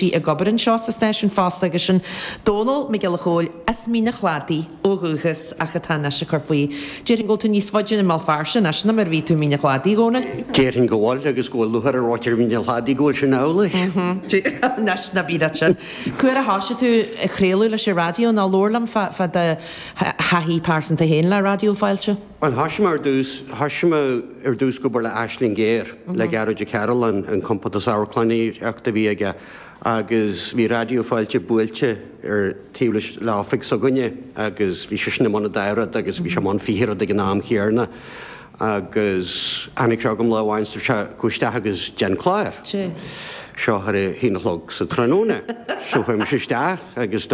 Bhí ag obair anseo sa stáisiún fosta agus sin Dónall Mac Giolla Chóill as Mín an Chladaigh ó dhúchas ach atá anois ag cur faoi. Déarfainn go bhfuil tú níos faide i mBéal Feirste anois ná mar a bhí tú i Mín an Chladaigh, a Dhónaill? Déarfainn go bhfuil, agus go bhfuil lúcháir ar mhuintir Mhín an Chladaigh go bhfuil sin amhlaidh. Anois ná bí ort sin. Cá huair a thosaigh tú ag craoladh leis an raidió? Nó labhair liom fá do thaithí pearsanta féin le Raidió Fáilte. Bhuel, thosaigh mé ar dtús, thosaigh mé ar dtús ag obair le Aisling Ghéar, le Gearóid Ó Cearruláin, an compántas amharclannaíochta a bhí aige agus bhí Raidió Fáilte buailte ar taobh leis, le oifig s'againne agus bhí seisean i mbun an dá rud agus bhí sé i mbun fiche rud ag an am chéarna agus tháinig sé chugam lá amháin agus dúirt sé, gabh isteach agus déan clár. Seo ar a haon a chlog sa tráthnóna. So chuaigh mise isteach agus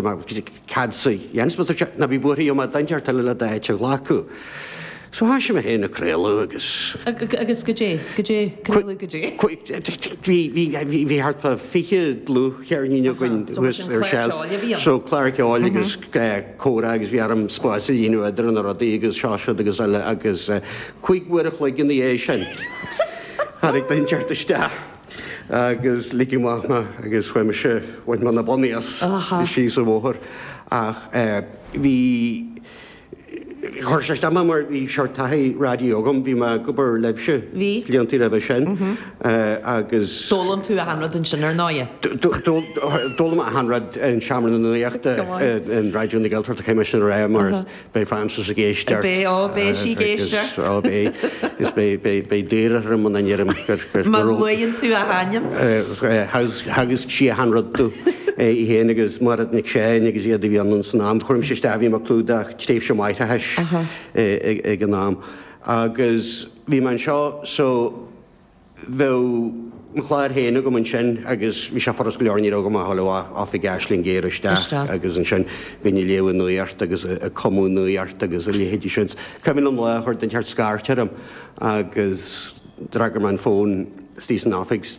Cad é a dhéanfas mé? Dúirt sé ná bí buartha beidh duine inteacht eile le d'áit a ghlacadh. So thosaigh mé féin ag craoladh agus. Agus goidé? Goidé? Craoladh goidé? Bhí, bhí thart fá fiche dlúthcheirnín againn thuas ar shelf. So clár ceoil agus comhrá agus bhí orm spás a líonadh idir na rudaí agus seo siúd agus eile agus cúig uair a chloig ina dhiaidh sin tháinig duine inteacht isteach. agus ligeadh amach mé agus chuaigh mise, bhain mé na bonnaí as, síos an bóthar ach bhí, chuir sé isteach mé mar bhí seort taithí raidió agam, bhí mé ag obair libhse blianta roimhe sin agus. D'fhoghlaim tú achan rud ansin ar ndóigh? D'fhoghlaim mé achan rud in Seomra na Nuachta in Raidió na Gaeltachta, caithfidh mé sin a rá mar Beidh Frances ag éisteacht. Beidh, oh, beidh sí ag éisteacht. Agus, oh, beidh, is beidh, beidh, beidh daor orm muna ndeirim gur, gur. Má luaíonn tú a hainm. Theagasc sí achan rud domh, í fhéin agus Máiread Nic Seáin agus iad a bhí ann san am. Cuireadh mise isteach, bhí mé ag clúdach tréimhse máithreachais ag an am. Agus bhí mé anseo, so. bheadh mo chlár féin agam ansin agus bhí sé furast go leor, ní raibh agam ach dhul amach as oifig Aisling Ghéar isteach agus ansin bhínn ag léamh an nuaíocht agus ag cumadh an nuaíocht agus a leithéidí sin. Cuimhin liom lá a chuir duine inteacht scairt orm agus d'fhreagair mé an fón istigh san oifig.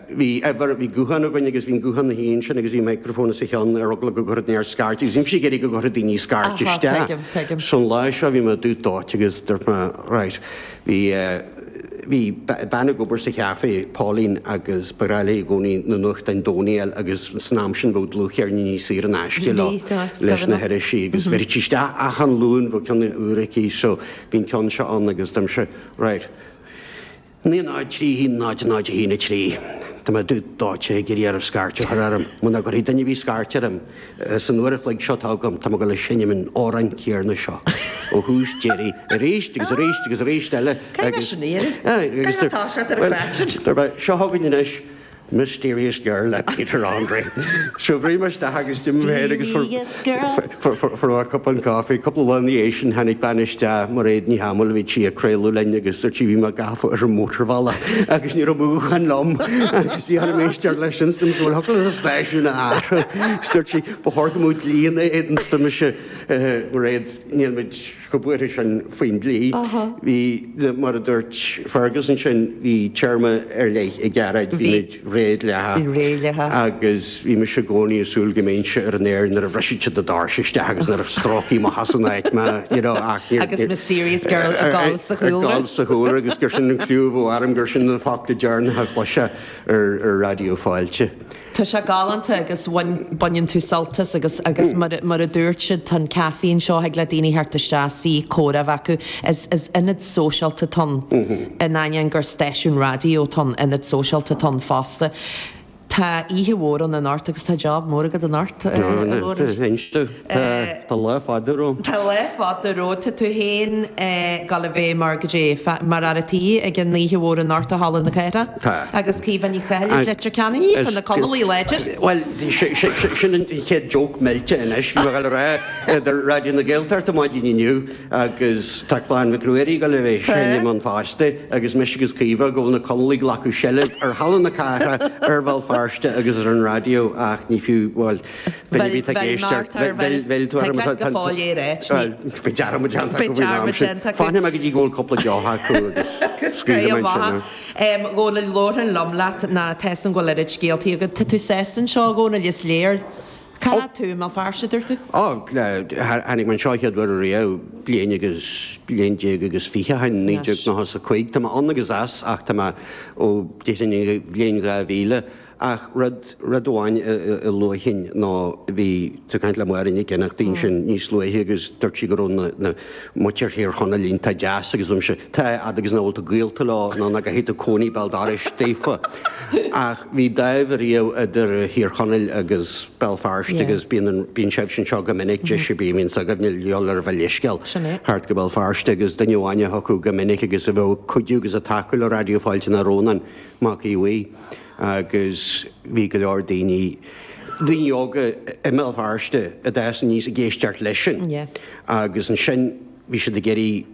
Bhí uimhir, bhí guthán againn agus bhí an guthán ina shuí ansin agus bhí microphone os a chionn ar eagla go gcuirfeadh duine inteacht scairt agus bhímis ag iarraidh go gcuirfeadh daoine scairt isteach. So an lá seo bhí mé dúdóite agus dúirt mé right, bhí, bhí bean ag obair sa cheafé, Pauline agus ba bhreá léi i gcónaí na nuachtáin Domhnaigh agus san am sin bheadh dlúthcheirníní saor in aisce leo leis na hirisí agus bheireadh sí isteach achan Luan, bheadh ceann úr aici so bhí an ceann seo ann agus dúirt mise right, 9031 0013. Tá mé dúdóite ag iarraidh oraibh scairt a chur orm. Muna gcuirfidh duine ar bith scairt orm san uair an chloig seo atá agam, tá mé ag dul a sheinm an amhráin chéarna seo ó thús deireadh arís agus arís agus arís eile. Cé leis an iarraidh? Cé atá seo ar an gcairt? Seo chugainn anois. Mysterious Girl le Peter Andre. Shocraigh mé isteach agus d'imigh mé agus fuair mé cupán caife. Cúpla lá ina dhiaidh sin tháinig bean isteach, Mairéad Ní hAdhmaill, a bhí sí ag craoladh linn agus dúirt sí bhí mé gafa ar an mótarbhealach agus ní raibh guthán liom agus bhí orm éisteacht leis sin agus ní thiocfadh liom an stáisiún a athrú. Dúirt sí, ba chóir go mbeadh dlí ina éadan, dúirt mise, Mairéad, níl muid. clúdaithe faoi sin faoin dlí. Bhí, mar a dúirt Fergus ansin, bhí téarma ar leith ag Gearóid, bhí muid inár réabhlóidithe agus bhí mise i gcónaí ag súil go mbeinnse ar an aer nuair a bhrisfeadh siad na doirse isteach agus nuair a stróicfí amach as an áit mé, you know, ach níor, agus mysterious girl ag gol sa chúlra, ag gol sa chúlra agus gur sin an clú a bheadh orm, gur sin na focla deireanacha a chloisfeá ar Raidió Fáilte. Tá sé galánta agus baineann tú sult as agus agus mar a dúirt siad tá an caifé seo thig le daoine theacht isteach, suí, comhrá a bheith acu. Is is ionad sóisialta atá ann, in ainneoin gur stáisiún raidió atá ann, ionad sóisialta atá ann fosta. Tá oíche mhór ann anocht agus tá job mór agat anocht, a Mhóraimh. Tá lá fada romham. Tá lá fada romhat. Tá tú féin ag gabháil a bheith mar goidé, mar fhear an tí ag an oíche mhór anocht i Halla na Cathrach. Tá. Agus Caoimhe Ní Chathail as Leitir Ceanainn í. Tá na Conallaigh láidir. Bhuel, sin an chéad joke millte anois. Bhí mé ag gabháil a rá ar Raidió na Gaeltachta maidin inniu agus tá clann Mhic Ruairí ag gabháil a bheith ag seinm ann fosta agus mise agus Caoimhe go bhfuil na Conallaigh ag glacadh seilbh ar Halla na Cathrach, ar Bhéal Feirste agus ar an Raidió ach ní fiú, bhuel. Bhuel, bhí tú ag éisteacht. Bhuel, bhuel, bhuel, tá dearmad. Tá cleachtadh go fóill air, ait. Bhuel, bhí dearmad déanta agam. Bhí dearmad déanta agam. Fanfaidh mé go dtí go bhfuil cúpla deoch acu agus scaoilim ansin thú. A Dhónaill, labharfainn liom leat, mar tá a fhios agam go bhfuil oiread scéaltaí agat. Tá tú sásta anseo, a Dhónaill, is léir. Cá fhad tú i mBéal Feirste, dúirt tú? Ó, tháinig mé anseo a chéad uair ariamh bliain agus, bliain déag agus fiche ó shin, naoi déag nócha is a cúig. Tá mé ann agus as ach tá mé ó, déarfainn, ón, bhliain dhá mhíle. Ach rud amháin a luaigh tú ansin ná bhí tú ag caint le Máire Nic Fhionnachtaín sin níos luaithe agus dúirt sí go raibh na na muintir ar Thír Chonaill iontach deas agus dúirt mise tá, a fhad agus nach bhfuil tú gaolta leo ná nach gcaithfidh tú cónaí i mbéal dorais daofa. Ach bhí dáimh riamh idir Thír Chonaill agus Béal Feirste agus bíonn an, bíonn sibhse anseo go minic agus ansin bíonn muintir s'agaibhne ag dul ar bhur leithscéal thart go Béal Feirste agus duine amháin a thiocfadh go minic agus a bheadh ag cuidiú agus ag tacú le Raidió Fáilte ná Rónán Mac Aodh Bhuí. agus bhí go leor daoine, daoine óga i mBéal Feirste a d'fhás aníos ag éisteacht leis sin, agus ansin bhí siad ag iarraidh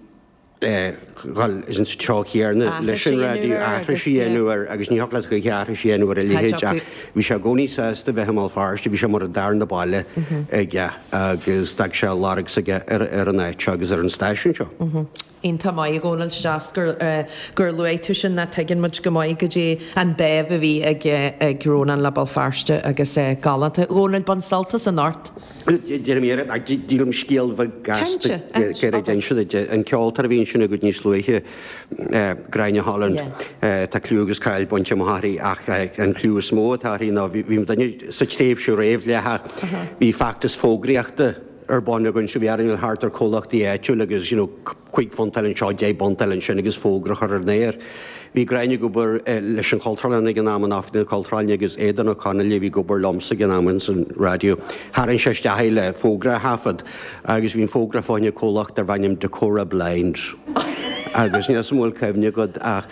dhul an treo chéanna leis an raidió, aithris a dhéanamh air, agus ní thiocfadh leat choíche aithris a dhéanamh ar a leithéid, ach bhí sé i gcónaí sásta bheith i mBéal Feirste, bhí sé mar an darna baile aige, agus d'fhág sé a lorg s'aige ar an áit seo agus ar an stáisiún seo. An-mhaith go ndéanann tú. Is maith gur luaigh tú sin mar tuigeann muid go maith cad é an dáimh a bhí ag Rónán le Béal Feirste agus é galánta. A Dhónaill bain sult as anocht. Deirim iarraidh ach sílim scéal beag gasta gearr a inseacht duit, an ceoltóir a bhí ansin agat níos luaithe, Gráinne Holland, tá clú agus cáil bainte amach aici ach an clú is mó atá uirthi ná bhí, dúinne sa tréimhse réamh-dhleathach bhí feachtas fógraíochta, ar bun againn so bhí orainn dul thart ar comhlachtaí áitiúil agus you know cúig phunt a fháil anseo, deich bpunt a fháil ansin agus fógra a chur ar an aer. Bhí Gráinne ag obair leis an Chultúrlann ag an am in Oifig na Cultúrlainne agus Eoghan Ó Conghaile a bhí ag obair liomsa ag an am ins an raidió. Tharraing sé isteach í le fógra a thaifead agus bhí an fógra fá choinne comhlacht darb ainm Decora Blinds agus níl a fhios agam an bhfuil cuimhne agat ach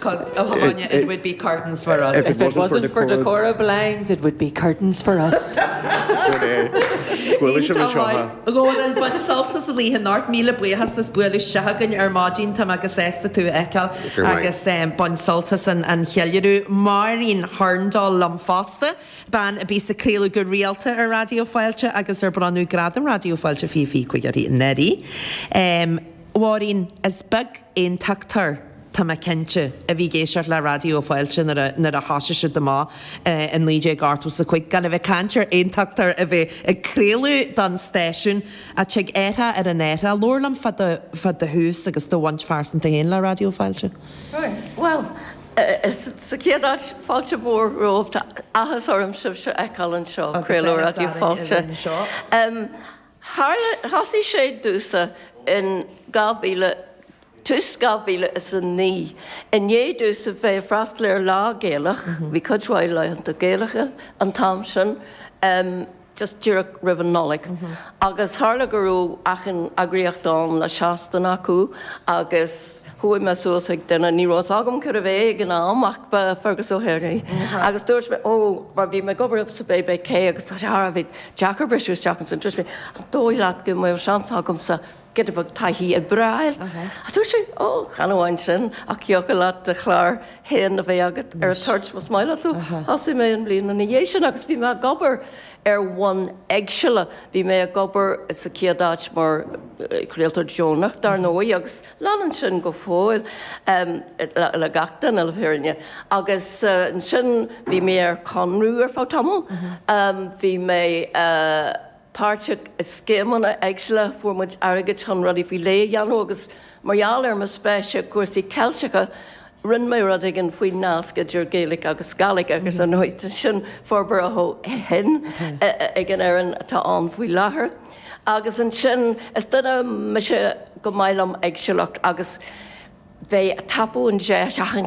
'Cos a thiomáineadh it would be curtains for us. If it wasn't for Decora blinds it would be curtains for us. Bhuel é. Buaileadh sibh anseo, ha? Dhónaill, bain sult as an oíche anocht, míle buíochas, as a bheith istigh againn ar maidin, tá muid sásta tú a fheiceáil agus bain sult as an cheiliúradh. Máirín Hurndall liom fosta, bean a bhí ag craoladh go rialta ar Raidió Fáilte agus ar bronnadh Gradam Raidió Fáilte fiche fiche cúig uirthi anuraidh. Mháirín, is beag aontachtóir. tá mé cinnte, a bhí ag éisteacht le Raidió Fáilte nuair a thosaigh sé amach i 1985, gan a bheith ag caint ar aontachtóir a bheith ag craoladh don stáisiún, ach tig athrú ar an athrú. Labhair liom fá do thús agus do bhaint phearsanta féin le Raidió Fáilte. Bhuel, sa chéad áit, fáilte mhór romhaibh. Tá athas orm sibhse a fheiceáil anseo, craoltóir Raidió Fáilte. Tharla, thosaigh sé domhsa in 2000, tús 2009, i ndiaidh domhsa a bheith ag freastal ar Lá Gaelach, bhí cuid mhaith laethanta Gaelacha an t-am sin, just díreach roimh an Nollaig, agus tharla go raibh achan eagraíocht ann le seastáin acu, agus chuaigh mé suas chuig duine, ní raibh fhios agam cérbh é ag an am ach ba Fergus O'Hare é, agus dúirt mé, oh, mar bhí mé ag obair sa BBC agus tá sé thar a bheith. deacair briseadh isteach ansin. An dóigh leat go mbeadh seans agamsa giota beag taithí oibre a fháil? Dúirt sé, Ó, chan amháin sin, ach thiocfadh leat do chlár féin a bheith agat ar an toirt, más maith leat. So thosaigh mé an bhliain ina dhiaidh sin agus bhí mé ag obair ar bhonn éagsúla. Bhí mé ag obair sa chéad áit mar chraoltóir deonach, dar ndóigh, agus. Leanann sin go fóill le gach duine, le fírinne. Agus ansin bhí mé ar conradh ar feadh tamall. Bhí mé páirteach i scéimeanna éagsúla, fuair muid airgead chun rudaí faoi leith a dhéanamh agus mar gheall ar mo spéis i gcúrsaí Ceilteacha, Rinne mé rud éigin faoin nasc idir Gaeilge agus Gàidhlig agus tá an áit sin forbartha ó shin ag an fhoireann atá ann faoi láthair. Agus ansin, is duine mise gur maith liom éagsúlacht agus bheith ag tapú an deis achan